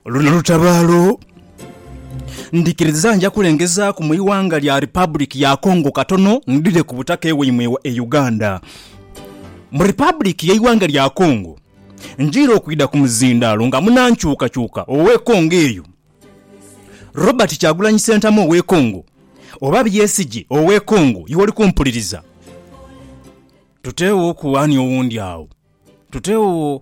Luno lutabaalo. Ndhikiriza nja kulengezaaku mu ighanga lya Republic ya Congo katono ndhire ku butaka ewaimwe e Uganda. Mu Republic y'eighanga lya Congo njiire okwidha ku muzindaalo nga munankyukakyuka ow'e Congo eyo, Robert Kyagulanyi Ssentamu ow'e Congo oba Byesigye ow'e Congo iwe oli kumpuliriza. Tuteewooku ani owundi agho. Tuteewoo.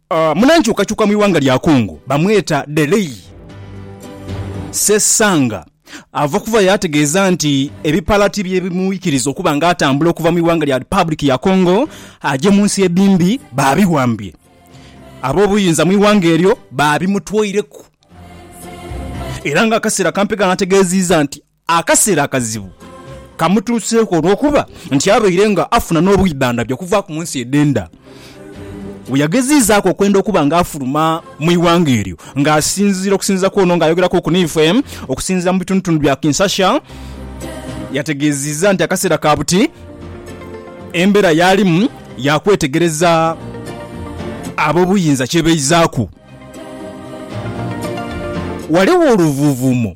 Munankyukakyuka mu ighanga lya Congo bamweta Deley Sesanga ava kuva yaategeeza nti ebipalati bye bimwikiriza okuba nga atambula okuva mu ighanga lya Republic ya Congo aje mu nsi edhimbi baabiwambye. Ab'obuyinza mu ighanga eryo baabimutwaireku era nga akaseera kampegaano ategeeziiza nti Akaseera akazibu kamutuuseeku olw'okuba nti abaire nga afuna n'obwidhandhabi okuvaaku mu nsi edh'enda. Bwe yageziizaaku okwenda okuba nga afuluma mu ighanga eryo nga asinziira okusinziira kwono nga ayogerakuuku n'ife okusinziira mu bitundutundu bya Kinsasha, yategeeziiza nti akaseera ka buti embeera y'alimu ya kwetegereza ab'obuyinza kye baizaaku. Ghaligho oluvuuvuumo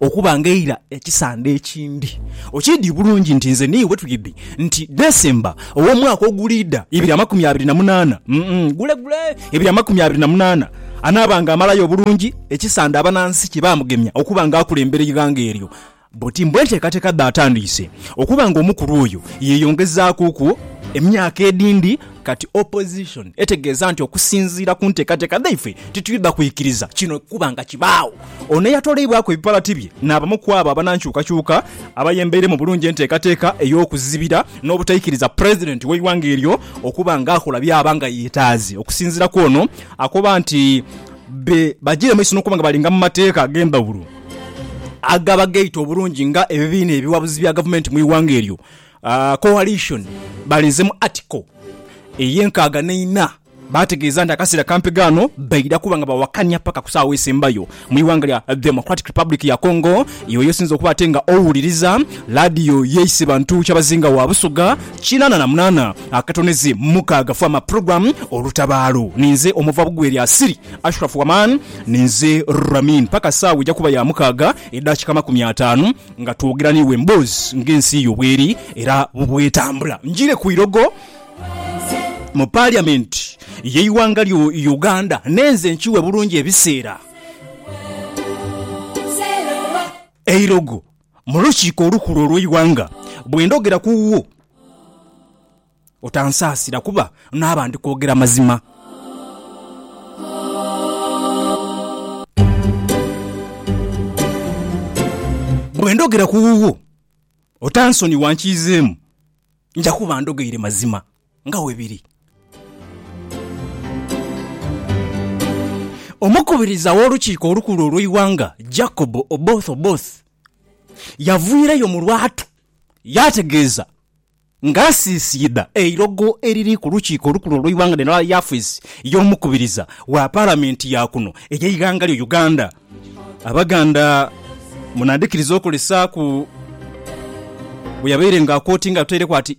Okuba nga eira ekisande ekindi okiidhi bulungi nti nze n'iwe twidhi nti December ow'omwaka oguliidha ibiri amakumi abiri na munaana, gulegule ibiri amakumi abiri na munaana, anaaba nga amalayo bulungi ekisande abanansi kye baamugemya okuba nga akulembera eighanga eryo bwoti mbu enteekateeka dhe atandiise okuba nga omukulu oyo yeeyongezaakuku emyaka edhindi. Kati opposition etegeeza nti okusinziira ku nteekateeka dhaifwe titwidha kwikiriza kino kukuba nga kibaagho. Ono eyatoleibwaku ebipalati bye n'abamu kwabo abanankyukakyuka abayembeire mu bulungi enteekateeka ey'okuzibira n'obutaikiriza president w'eighanga eryo okuba nga akola byaba nga yetaaze. Okusinziira kwono akoba nti be bajiire mumaiso n'okuba nga balinga mu mateeka ag'endhawulo agaba geita obulungi nga ebibiina ebiwabuzi bya gavumenti mu ighanga eryo Aa Coalition balinze mu Article ey'enkaaga n'eina baategeeza nti akaseera kampi ghano baidha kuba nga bawakanya paka ku saagho esembayo mu ighanga lya Democratic Republic ya Congo yoyo esinze okuba ate nga owuliriza laadiyo yeise bantu kyabazinga wa Busoga kinaana na munaana akatoneze mukaaga Farmer Program Olutabaalo ninze omuva bugwe lya Siri Ashraf Waman ninze Ramin paka saawa eja kuba ya mukaaga edakika amakumi ataanu Nga twogera n'iwe emboozi ng'ensi yo bweri era bwetambula, njiire ku irogo mu Paliamenti y'eighanga lyo Uganda n'enze nkiwe bulungi ebiseera eirogo mu lukiiko olukulu olw'eighanga bwendhogera ku wo. Otansaasira kuba naaba ndi kwogera mazima. Bwe ndhogera ku wuwo, otansonigha nkiizeemu, nja kuba ndhogeire mazima nga bwe biri. Omukubiriza w'Olukiiko Olukulu olw'eighanga, Jacob Oboth Oboth, yaviireyo mu lwatu yaategeeza Ng'asiisiidha eilogo eriri ku lukiiko olukulu olw'eighanga lino aghali afiisi y'omukubiriza wa Palamenti ya kuno ey'eighanga lyo Uganda, Abaganda munandhikiriza okolesaaku bwe yabaire ng'akootinga ataireku ati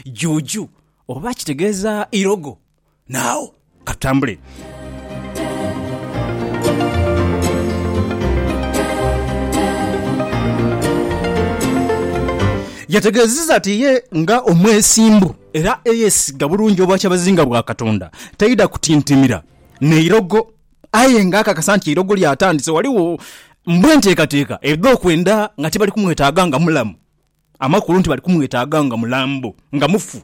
Juju oba kitegeeza ilogo. naagho. Ka tutambule. Yategeezezza nti ye nga omwesimbu era eyeesiga bulungi Obwakyabazinga bwa Katonda, taidha kutintimira n'eirogo aye nga akakasa nti eirogo lyatandise ghaligho mbu enteekateeka edh'okwenda nga tibali kumwetaaga nga mulamu. amakulu nti bali kumwetaaga nga mulambo, nga mufu.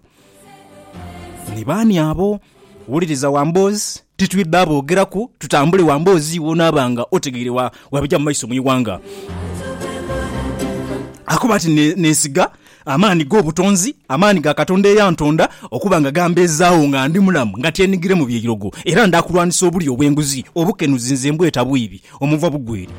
Ni baani abo? Wuliriza Wamboozi, titwidha aboogeraku, tutambule Wamboozi w'onaaba nga otegeire wa bija mu maiso mu ighanga. Akoba ati, Neesiga amaani g'obutonzi, amaani ga Katonda eyantonda, okuba nga gambeezaagho nga ndi mulamu, nga tyenigire mu byeirogo, era ndaakulwanisa obulyo obw'enguzi, obukenuzi nze mbweta bwiibi, omuva bugwere.